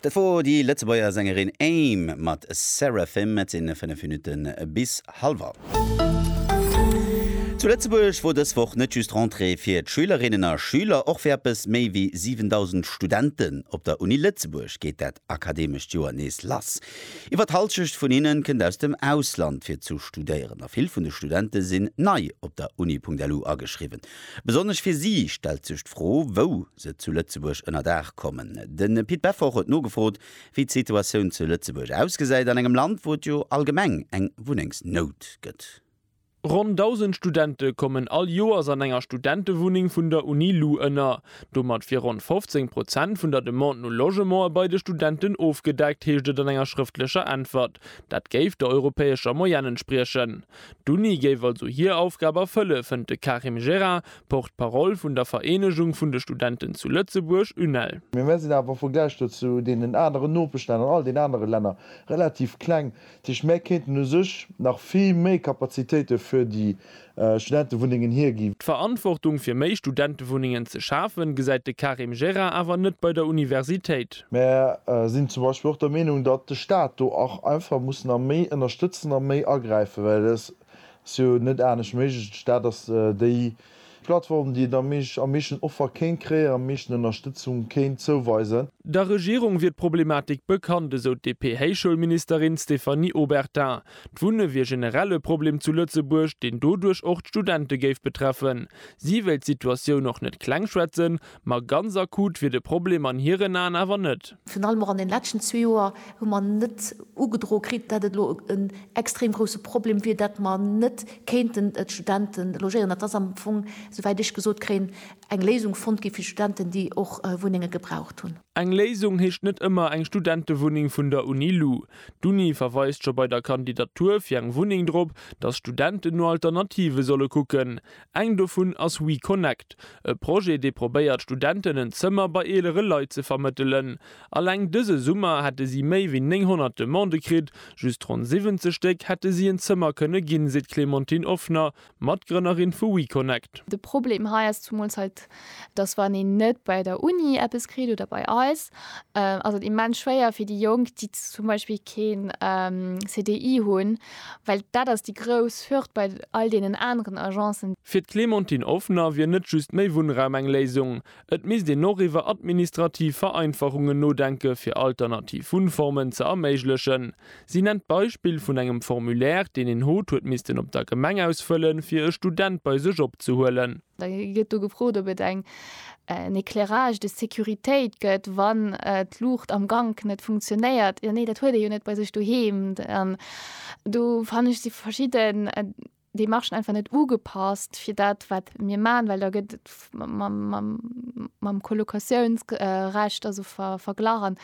Dat wor déi Lëtzebuerger Sängerin Aim mat Seraphim. Et sinn 5 Minutten bis halwer. Zu Lëtzebuerg wor dës Woch net just Rentrée fir d'Schülerinnen a Schüler. Och fir eppes méi wéi 7.000 Studenten op der Uni Lëtzebuerg geet dat akademescht Joer nees lass. Iwwer d'Hallschecht vun hinne kënnt aus dem Ausland fir zu studéieren a vill vun de Studente sinn nei op der Uni.lu ageschriwwen. Besonnesch fir si stellt sech d'Fro, wou se zu Lëtzebuerg ënner Daach kommen. De Pit Beffort huet nogefrot, wéi d'Situatioun zu Lëtzebuerg ausgesäit, an engem Land, wou et jo allgemeng eng Wunnengsnout gëtt. Ronn 1.000 Studente kommen all Joers an enger Studentewunneng vun der Uni lu ënner. Domat wier ronn 15 Prozent vun der Demande no Logementer bei de Studenten ofgedeckt, heescht et an enger schrëftlecher Äntwert. Dat géif der europäescher Moyenne entspriechen. D'Uni géif also hir Aufgab erfëlle, fënnt de Karim Jera, Porte-parole vun der Vereenegung vun de Studenten zu Lëtzebuerg, UNEL. Mee mir sinn awer am Vergläich do zu deenen aneren Nopeschlänner an all den anere Länner relativ kleng. Dat heescht, mär kéinten u sech nach vill méi Kapazitéite fir déi Studentewunnengen hiergi. D'Verantwortung fir méi Studentewunnengen ze schafen, gesäit de Karim Jera awer net bei der Universitéit. Mer sinn zum Beispill och der Meenung, datt de Stat do och einfach muss nach méi ënnerstëtzen a méi agräifen, well et ass jo net anescht méiglech. De Stat ass déi Plattform, déi et am meeschten Offer kéint kréien, am meeschten Ënnerstëtzung kéint zouweisen. Der Regierung wier d'Problematik bekannt, esou d'DP-Héichschoulministerin Stéphanie Obertin. D'Wunne wier generell e Problem zu Lëtzebuerg, deen doduerch och d'Studente géif betreffen. Si wéilt d'Situatioun och net klengschwätzen, Ma ganz akut wier de Problem an hiren Aen awer net. Virun allem och an den leschten zwee Joer hu mer net ugedro kritt, dat et elo en extrem grousse Problem wier, dat mer net kéinten d'Studente logéieren. Et ass am Fong, souwäit ech gesot kréien, eng Léisung fonnt gi fir d'Studenten, déi och Wunnenge gebraucht hunn. Eng Léisung heescht net ëmmer eng Studentewunneng vun der Uni lu. D'Uni verweist scho bei der Kandidatur fir eng Wunneng drop, datt Studenten no Alternative solle kucken. Eng dovun ass WeConnect, e Projet, dee probéiert, Studenten en Zëmmer bei eelere Leit ze vermëttelen. Alleng dëse Summer hätte si méi wéi 900 Demandë kritt, just ronn 70 Stéck hätte si en Zëmmer kënne ginn, seet d'Clémentine Offner, Matgrënnerin vu WeConnect. De Problem hei ass zumools hei dass wann een net bei der Uni eppes kritt oder bei eis, ass et immens schwéier fir déi Jonk, déi zum Beispill keen CDI hunn, well dat ass déi grouss Hürd bei all deenen aneren Agencen. Fir d'Clémentine Offner wier net just méi Wunnraum eng Léisung. Et misst een och iwwer administrativ Vereinfachungen nodenke fir alternativ Wunnformen ze erméiglechen. Si nennt d'Beispill vun engem Formulaire, deen een hot huet missten op der Gemeng ausfëllen, fir e Student bei sech opzehuelen. Da gëtt do gefrot, ob et eng, en éclairage de sécuritéit gëtt, wann d'Luucht am Gank net funktionéiert. Jo, nee, dat huet ee jo net bei sech doheem. An do fannen ech, si verschidden Demarchen einfach net ugepasst fir dat, wat mir maachen, well da gëtt et mam, mam, mam Colocatiouns recht also verglach. An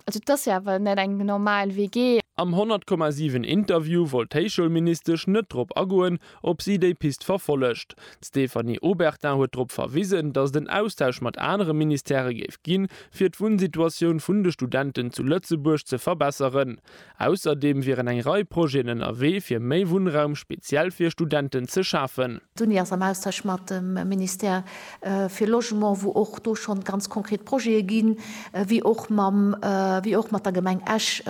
Also et ass jo awer net eng normal WG. Am 100 Komma 7 Interview wollt d'Héichschoulministesch net drop agoen, ob si déi Pist verfollegt. D'Stéphanie Obertin huet drop verwisen, datt et en Austausch mat anere Ministèrë géif ginn, fir d'Wunnsituatioun vun de Studenten zu Lëtzebuerg ze verbesseren. Ausserdeem wieren eng Rei Projeten ënnerwee fir méi Wunnraum speziell fir Studenten ze schafen. D'Uni ass am Austausch mat dem Ministère fir Logement, wou och do schonn ganz konkret Projete ginn, wéi och mam, wéi och mat der Gemeng Esch,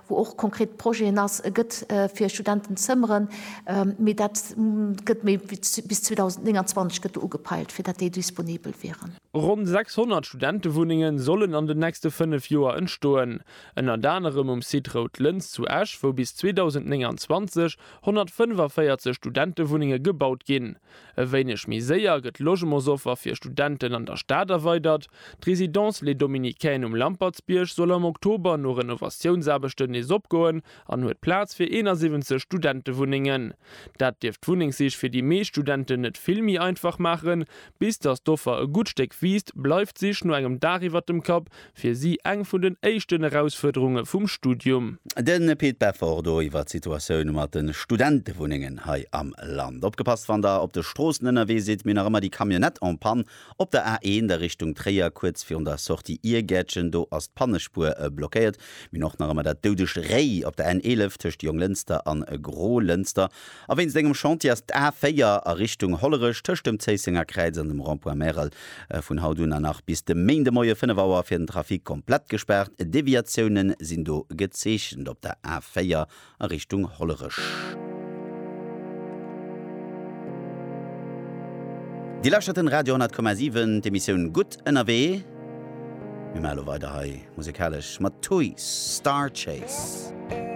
wou och konkret Projeten ass, gëtt fir Studenten Zëmmeren, mee dat gëtt méi wéi bis 2029 gëtt do ugepeilt, fir dat déi disponibel wieren. Ronn 600 Studentewunnenge sollen an den nächste fënnef Joer entstoen. Ënnert anerem um Site Rout Lëns zu Esch, wou bis 2029 145 Studentewunnenge gebaut ginn. E wéineg méi séier gëtt d'Logementsoffer fir Studenten an der Stad erweidert. D'Résidence Les Dominicaines um Lampertsbierg soll am Oktober no Renovatiounsaarbechten nees opgoen an huet Plaz fir 71 Studentewunnengen. Dat dierft d'Wunnengsich fir déi meescht Studenten net vill méi einfach maachen, Bis datt d'Offer e gutt Stéck wiisst, bleift d'Sich no engem Daach iwwert dem Kapp fir si eng vun den éischten Erausfuerderunge vum Studium. De Pit Beffort do iwwer d'Situatioun mat de Studentewunnengen hei am Land. Opgepasst wann der op de Stroossen ënnerwee sidd, mir nach ëmmer déi Camionnette en Panne op der A1 a Richtung Tréier, kuerz virun der Sortie Iergäertchen. Do ass d'Pannespuer blockéiert. Mir hunn och nach ëmmer dat doudegt Réi op der N11 tëscht Jonglënster a Grolënster. A wéinst engem Chantier ass d'A 4 a Richtung Hollerech tëscht dem Zéissenger Kräiz an dem Rond-point Märel vun haut un an nach bis de Méindemoie 5 Auer fir den Trafic komplett gespaart. Deviatioune sinn do gezeechent op der A 4 a Richtung Hollerech. Dir lauschtert den Radio 10,7, d'Emissioun Gutt ënnerwee. Mir maache lo weider hei musekalesch mat Tui, Starchase.